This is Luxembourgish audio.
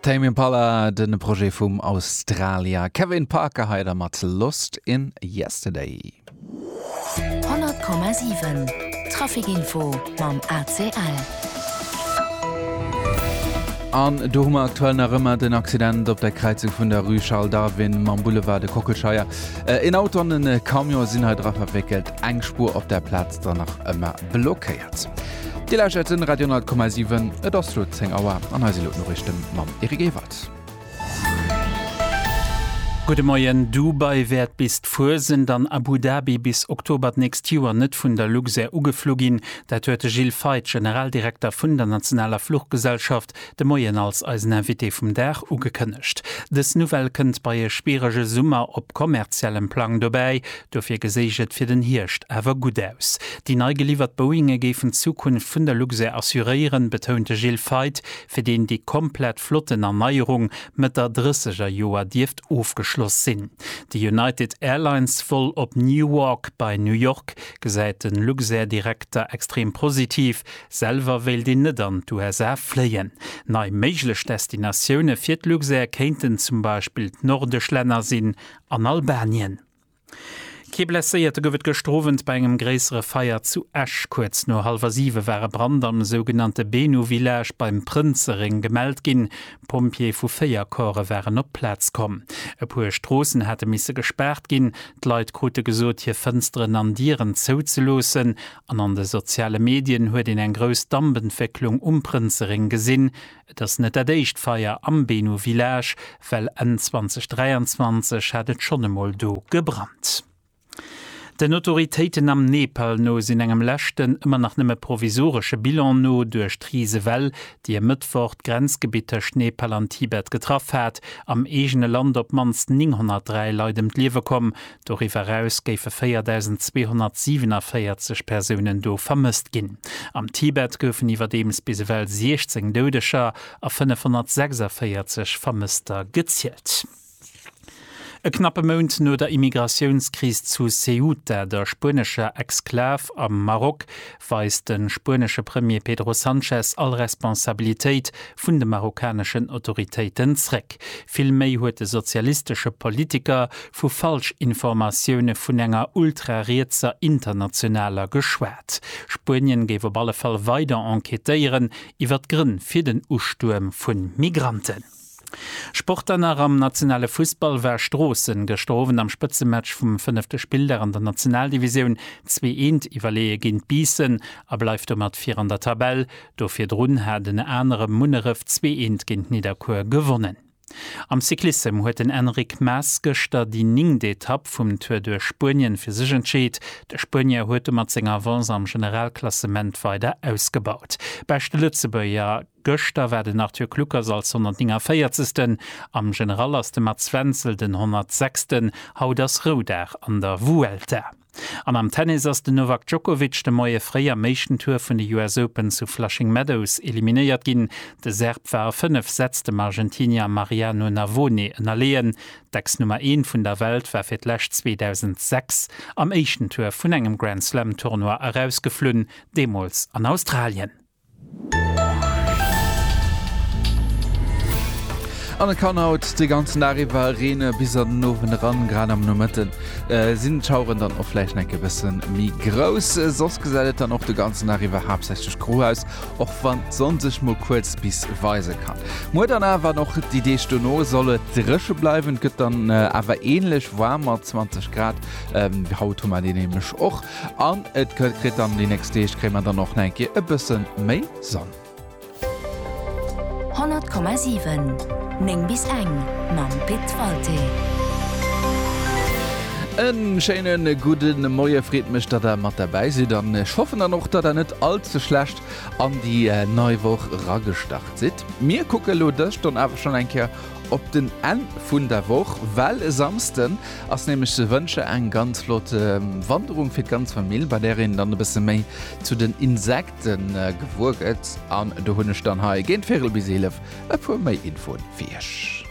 Tame Impala, de Projet vum Australier Kevin Parker hei da mat Lost in Yesterday. 100,7 Traficinfo mam ACL. An do hu mer aktuell nach ëmmer den Accident op der Kräizung vun der Rue Charles Darwin mam Boulevard de Kockelscheier. Äh, een Auto an en Camion sinn hei dra verwéckelt, eng Spur op der Plaz. ass dann nach ëmmer blockéiert. Dir lauschtert den Radio 10,7. Et ass lo 10 Auer an hei si lo d'Noriichte mam Eric Ewald. Gudde Moien, Dubai wäert bis d'Fuesent an Abu Dhabi bis Oktober d'nächst Joer net vun der Luxair ugeflu ginn. Dat huet de Gilles Feith, Generaldirekter vun der nationaler Fluchgesellschaft, de Moien als eisen Invité vum Dag ugekënnegt. Dës Nouvelle kënnt bei e spierege Summer op kommerziellem Plang dobäi. Dofir geséich et fir den Hierscht awer gutt aus. Déi nei geliwwert Boeinge géifen d'Zukunft vun der Luxair assuréieren, betount de Gilles Feith, fir deen déi komplett Flottenerneuerung Mëtt der drësseger Joer dierft ofgeschloss sinn. De United Airlines Vol op Newark bei New York gesäit de Luxair-Direkter extrem positiv. Selwer wéilt een net an d'USA fléien. Nei méiglech Destinatioune fir d'Luxair kéinten zum Beispill d'nordesch Länner sinn an Albanien. Kee Blesséierte gouf et gëschter Owend bei engem gréissere Feier zu Esch. Kuerz no hallwer siwe war e Brand am sougenannte Benu Village beim Prënzeréng gemellt ginn. Pompjeeë vu véier Corpse waren op d'Plaz komm. E puer Stroossen hate misse gespaart ginn. D'Leit krute gesot, hir Fënsteren an Dieren zouzeloossen An an de soziale Medien huet een eng grouss Dampentwécklung um Prënzeréng gesinn. Et ass net dat éischt Feier am Beno Village, well Enn 2023 hat et schonn emol do gebrannt. Den Autoritéiten am Nepal no sinn engem leschten, ëmmer nach nëmme provisoresche Bilan no, duerch d'Risewell, déi e Mëttwoch d'Grenzgebitt tëscht Nepal an Tibet getraff hat, am eegene Land op d'mannst 903 Leit ëm d'Liewe komm, Doriwwer eraus géife 4.247 Persounen do vermësst ginn. Am Tibet goufen iwwerdeems bis ewell 16 Doudeger a 546 Vermësster gezielt. E knappe Mount no der Immigratiounskris zu Ceuta, der spuenescher Exklav am Maroc, weist de spuenesche Premier Pedro Sanchez all Responsabilitéit vun de marokkaneschen Autoritéiten zréck. Vill méi huet de sozialistesche Politiker vu Falschinformatioune vun enger ultrarietser Internationaler geschwat. Spuenien géif op alle Fall weider enquêtéieren iwwer d'Grënn fir den Ustuerm vu Migranten. Sport dann nach, Am nationale Fussball war Stroossen gëschter Owend am Spëtzematch vum fënnefte Spilldag an der Nationaldivisioun zwee Eent iwwerleeë géint Biissen a bleift domat vir an der Tabell. Do virdrun hat en anere Munneref zwee Eent géint Nidderkuer gewonnen. Am Cyclissem huet den Enric Mas gëschter déi ningt Etapp vum Tour duerch Spuenien fir sech entscheet. De Spuenier huet domat seng Avance am Generalklassement weider ausgebaut. Beschte Lëtzebuerger. Gëschter war den Arthur Kluckers als 149. Am General ass de Mats Wenzel den 106. Haut ass Roudag an der Vuelta. An am Tennis ass den Novak Djokovic de Moie fréi am éischten Tour vun de US Open zu Flushing Meadows eliminéiert ginn. De Serb war a 5 Sätz dem Argentinier Mariano Navone ënnerleeën. D'Ex-Nummer Een vun der Welt war fir d'lescht 2006 am éischten Tour vun engem Grand-Slam-Tournoi erausgeflunn, deemools an Australien. An et kann haut de ganzen Dag iwwer reene bis an den Owend eran. Grad am Nomëtte sinn d'Schaueren dann och vläicht enk e bësse méi grouss. Soss gesäit et dann och de ganzen Dag iwwer haaptsächlech gro aus, och wann d'Sonn sech mol kuerz bis weise kann. Muer dann awer an och déi Deeg dono soll et dréche bleiwen. Et gëtt dann awer änlech waarm mat 20 Grad, wéi haut hu mer deen nämlech och. An et kënnt kritt dann déi nächst Deeg kréie mer dann och nach eng Kéier e bësse méi Sonn. 100,7 9 bis eng mam Pit Walté. E schéine gudde Moie, freet mech datt der mat derbäi sidd an ech hoffen dann och datt der net all ze schlecht an déi nei Woch eragestart sidd. Mir kucke lo dës Stonn awer schonn eng Kéier op den Enn vun der Woch, well e Samsden Ass nämlech ze wënsche eng ganz flott Wanderung fir d'ganz Famill, bei där een dann e bësse méi zu den Insekte gewuer gëtt. An do hunn ech dann hei, géint Virel bis 11, e puer méi Infoen fir iech.